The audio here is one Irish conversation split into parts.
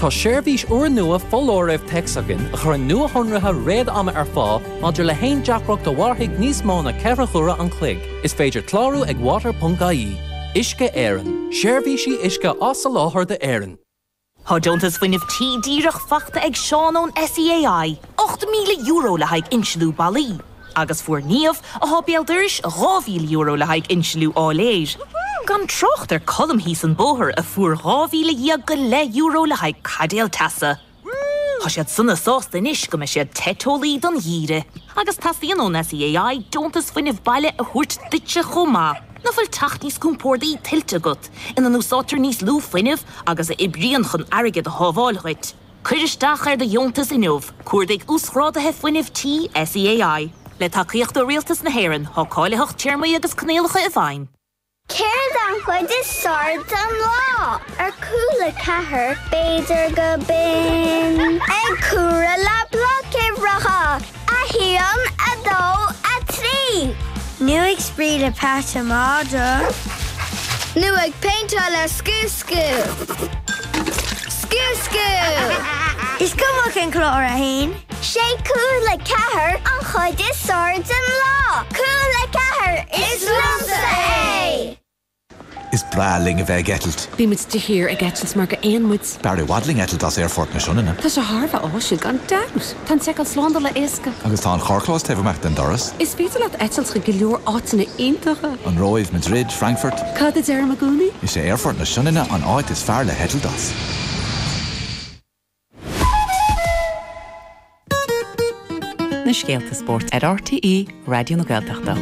Tá seirbhís úrnua foláirimh téacs againn a chuireann nuashonruithe réad-ama ar fáil maidir le haon deacracht a mhairfidh níos mó ná ceithre huaire an chloig. Is féidir clárú ag water.ie. Uisce Éireann, seirbhísí uisce á soláthar d'Éirinn. Tá deontas Fuinnimh Tí díreach faighte ag Seán ón SEAI, €8,000 le haghaidh inslniú ballaí. agus fuair Niamh, atá béal dorais, dhá mhíle euro le haghaidh insliú áiléir. Gan trácht ar Colm thíos an bóthar a fuair dhá mhíle dhéag go leith euro le haghaidh caidéal teasa. Tá siad sona sásta anois go mbeidh siad te teolaí don gheimhreadh. Agus teastaíonn ón SEAI deontas fuinnimh baile a thabhairt duitse chomh maith. Nach bhfuil teach níos compórdaí tuillte agat, ina n-úsáidtear níos lú fuinnimh agus a oibríonn chun airgead a shábháil dhuit? Cuir isteach ar do dheontas inniu Cuardaigh Uasghrádaithe Fuinnimh Tí SEAI. Le tacaíocht ó Rialtas na hÉireann, tá cáilitheacht téarmaí agus coinníollacha i bhfeidhm. Céard an chuid is fearr den lá? Ar Cúla Ceathair, b'fhéidir gurb in. Ag comhaireamh le bloic uimhreacha. 1, 2, 3, Nó ag spraoi le Pat an Madra. Nó ag péinteáil le scuabscú. Scuabscú! Is cuma cén clár atá ann. 'Sé Cúla Ceathair an chuid is fearr den lá. Cúla Ceathair, is liomsa é! Is breá linn a bheith ag eitilt. Bímid de shíor ag eitilt mar gur éin muid. B'fhearr i bhfad linn eitilt as Aerfort na Sionainne. Tá sé thar a bheith áisiúil gan dabht! Tá an tseiceáil slándála éasca. Agus tá an carrchlós taobh amuigh den doras. Is féidir leat eitilt chuig go leor áiteanna iontacha. An Róimh, Madrid, Frankfurt. Cad a deirim i gcónaí? Is é Aerfort na Sionainne an áit is fearr le heitilt as. na scéalta spóirt ar RTÉ Raidió na Gaeltachta.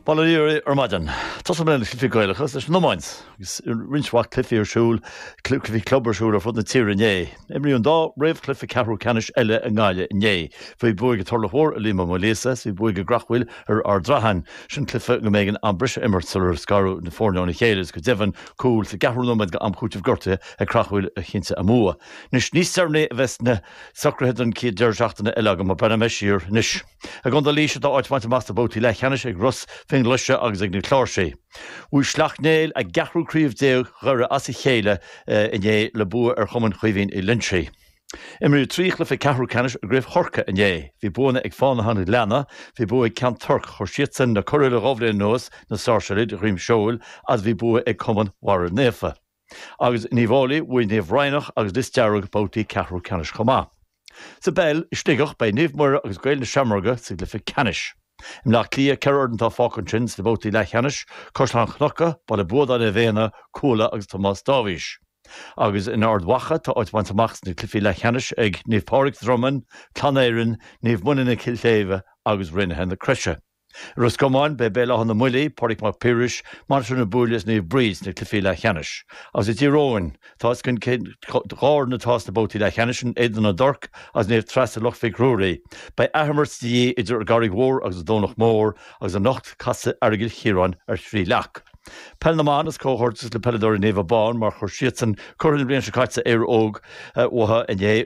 Bail ó Dhia oraibh ar maidin. Tosóidh mé leis na Cluichí Gaelacha is leis an iomáint, agus roinnt mhaith cluichí ar siúl, cluichí club ar siúl ar fud na tíre inné. Imríodh an dá réamhchluiche ceathrú ceannais eile i nGaillimh inné. Bhí buaidh ag an Turlach Mór ar Liam Ó Maoilíosa is bhí buaidh ag Creachmhaoil ar Ard Raithin. Sin cluiche go mb'éigean am breise a imirt sular scaradh na foirne óna chéile is go deimhin cúl sa gceathrú nóiméad d'am cúitimh gortuithe ag Creachmhaoil a chinntigh a mbua. Anois níos deireanaí a bheas na socruithe don chéad deireadh seachtaine eile agam, mar breathnóidh mé siar anois. I gContae Laois atá áit bainte amach sna babhtaí leathcheannais ag Ros Fionnghlaise agus ag na Cláirsigh. Bhuaigh Sleacht Néill a gceathrú craobh déag Dhoire as a chéile inné le bua ar chumann Chaoimhín Uí Loinsigh. Imríodh trí chluiche ceathrú ceannais i gCraobh Chorcaí inné. Bhí buanna ag Fánaithe an Ghleanna, bhí bua ag Ceann Toirc, chuir siadsan na curaidh le dhá bhliain anuas, na Sáirséalaigh de dhroim seoil, agus bhí bua ag cumann Bharra Naofa. Agus in Uíbh Fháilí, bhuaigh Naomh Raghnach agus Lios Dearg babhtaí ceathrú ceannais chomh maith. Sa bpeil, i Sligeach, beidh Naomh Muire agus Gaeil na Seamróige sa gcluiche ceannais. I mBleá Cliath, ceithre fhoireann atá fágtha ansin sna babhtaí leathcheannais, Caisleán Cnucha, Baile Buadáin Naomh Éanna, Cuala agus Tomás Dáibhís. Agus in Ard Mhacha, tá áit bainte amach sna cluifí leathcheannais ag Naomh Pádraig, Dromainn, Clann Éireann, Naomh Moninne, Cill Shléibhe agus Raonaithe na Croise. I Ros Comáin, beidh Béal Átha na mBuillí, Pádraig Mac Piarais, Mainistir na Búille is Naomh Bríd sna cluifí leathcheannais. Agus i dTír Eoghain, tá a fhios againn cén dá fhoireann atá sna babhtaí leathcheannais, An Éadan na dTorc agus Naomh Treasa Loch Mhic Ruairí. Beidh athimirt de dhíth idir an gCarraig Mhór agus an Domhnach Mór agus anocht, casfaidh Aireagal Chiaráin ar Thrí Leac. Peil na mBan is comhghairdeas le peileadóirí Naomh Abán mar chuir siadsan curaidh na bliana seo caite Éire Óg uathu inné.